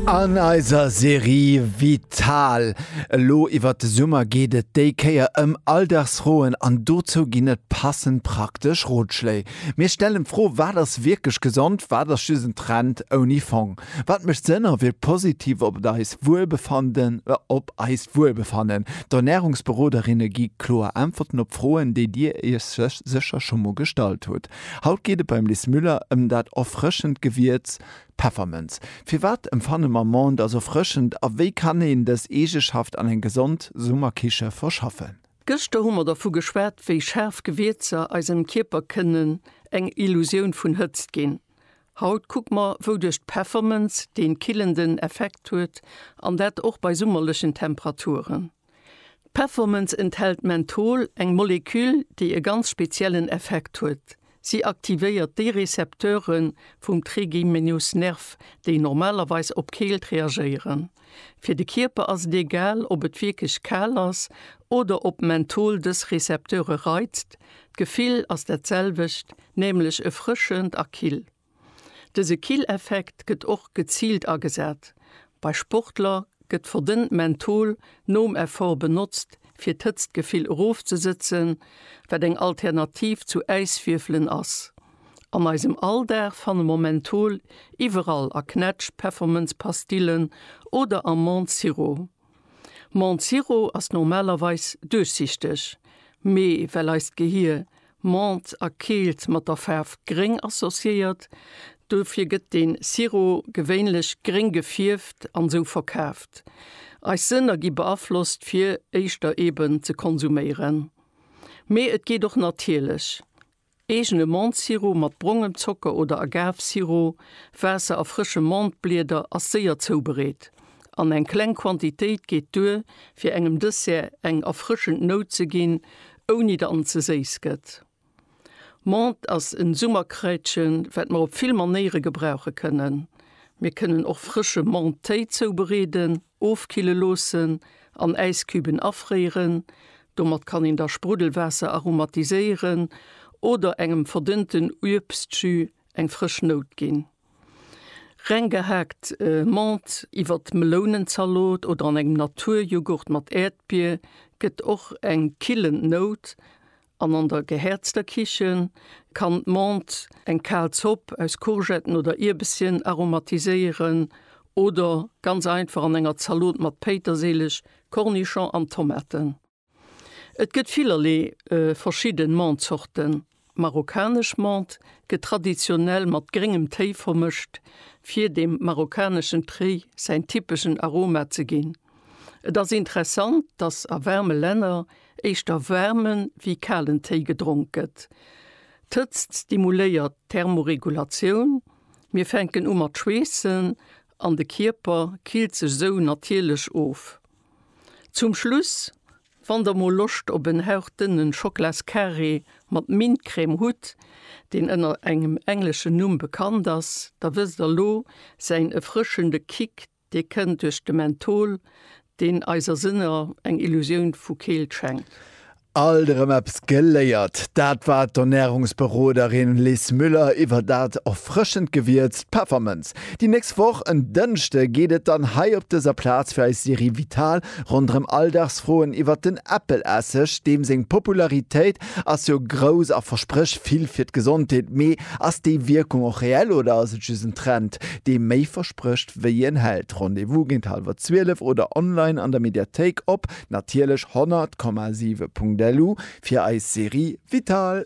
An eiser Serie Vital elo iwwert de Summer geet et déi Kéier ëm Alldagsfroen an dozou ginn et passend praktesch Rotschléi. Mir stellen d'Fro, Wat ass wierklech gesond? Wat ass just en Trend ouni Fong? Wat mécht Sënn a wierkt positiv op eist Wuelbefannen? D'Ernärungsberoderinne gi kloer Äntwerten op Froen, déi Dir Iech sécher scho mol gestallt hutt. Haut geet et beim Lis Müller ëm dat erfrëschend Gewierz Peffermënz. Firwat emfanne mer Menthe als erfrëschend a wéi kann een dës Eegeschaft an eng gesond Summerkiche verschaffen? Gëschter hu mer dervu geschwat, wéi schaarf Gewierzer eisem Kierper kënnen eng Illusioun vun Hëtzt ginn. Haut kucke mer, wouduerch d'Peffermënz dee killenden Effekt huet, an dat och bei summerlechen Temperaturen. D'Peffermënz enthält Menthol, eng Moleküll, déi e ganz speziellen Effekt huet. Si aktivéiert déi Rezepteure vum Trigeminusnerv, déi normalerweis op Keelt reagéieren. Fir de Kierper ass et egal, ob et wierklech kal ass oder ob Menthol dës Rezepteure reizt, d'Gefill ass dat selwecht, nämlech erfrëschend a kill. Dëse Killeffekt gëtt och geziilt agesat. Bei Sportler gëtt verdënnt Menthol nom Effort benotzt, fir d'Hëtztgefill erofzesëtzen, wat eng Alternativ zu Äiswierfelen ass. An eisem Alldag fanne mer Menthol iwwerall, a Knätsch-, Peffermënz-, Pastillen oder am Menthe-Sirop. Mount Zero ass normalerweis duerchsichteg, mee well eist Gehier Mount a Keelt mat der Faarf Gréng associéiert, duerfir gëtt den Zero gewéinlech gréng gefierft an sou verkaaft. Eis Sënner gi beaflosst fir éischter eben ze konsuméieren. Mee et geet och natierlech, Eegene Mentesirop mat brongem Zocker oder Agavesirop, Waasser a frësche Menteblieder ass séier zoubereet an eng kleng Quantitéit geet duer, fir engem Dessert eng erfrëschend Nout ze ginn, ouni datt en ze séiss gëtt. Menthe ass en Summerkraitchen, wat mer op vill Manéiere gebrauche kënnen. Mir kënnen och frësche Mentetéi zoubereeden. Ofkille loossen an Äiscubën afréiren. Domat kann een da Spruddelwaasser aromatiséieren oder engem verdënnten Uebstjus eng frësch Nout ginn. Reng gehaakt Menthe iwwert d'Melounenzalot oder an engem Naturjoghurt mat Äerdbier gëtt och eng killend Nout An an der gehäerzter Kichen kann d'Menthe eng kal Zopp aus Courgetten oder Ierbesschen aromatiséieren oder ganz einfach an enger Zalot mat Péitersilich, Kornischong an Tomaten. Et gëtt villerlee verschidden Menthe-Zorten. Marokkanesch Menthe gëtt traditionell mat gréngem Téi vermëscht, fir dem marokkaneschen Téi säin typeschen Aroma ze ginn. Et ass interessant, dass a waarme Länner éischter waarme wéi kalen Téi gedronk gëtt. D'Hëtzt stimuléiert d'Thermoregulatioun, mir fänken u mat schweessen an de Kierper killt sech sou natierlech of. Zum Schluss, wann der mol Loscht op en hauchdënne Schoklascarré mat Mintcrème hutt, deen ënner engem engleschen Numm bekannt ass, da wësst der lo säin erfrëschende Kick, Dee kënnt duerch de Menthol, deen eiser Sënner eng Illusioun vu Keelt schenkt. Alt erëm eppes geléiert! Dat war d'Ernärungsberoderin Liz Müller iwwer dat erfrëschend Gewierz, d'Peffermënz. Déi nächst Woch, en Dënschde, geet et dann hei op dëser Plaz fir eis Serie Vital ronderëm Alldagsfroen iwwer den Äppelesseg, deem seng Popularitéit Ass jo grouss a versprécht vill fir d'Gesondheet, mee ass déi Wierkung och reell oder ass et just en Trend, dee méi versprécht wéi en hält? Rendez-vous géint hallwer 12 oder online an der Mediathéik op natierlech 100,7.lu fir eis Serie Vital.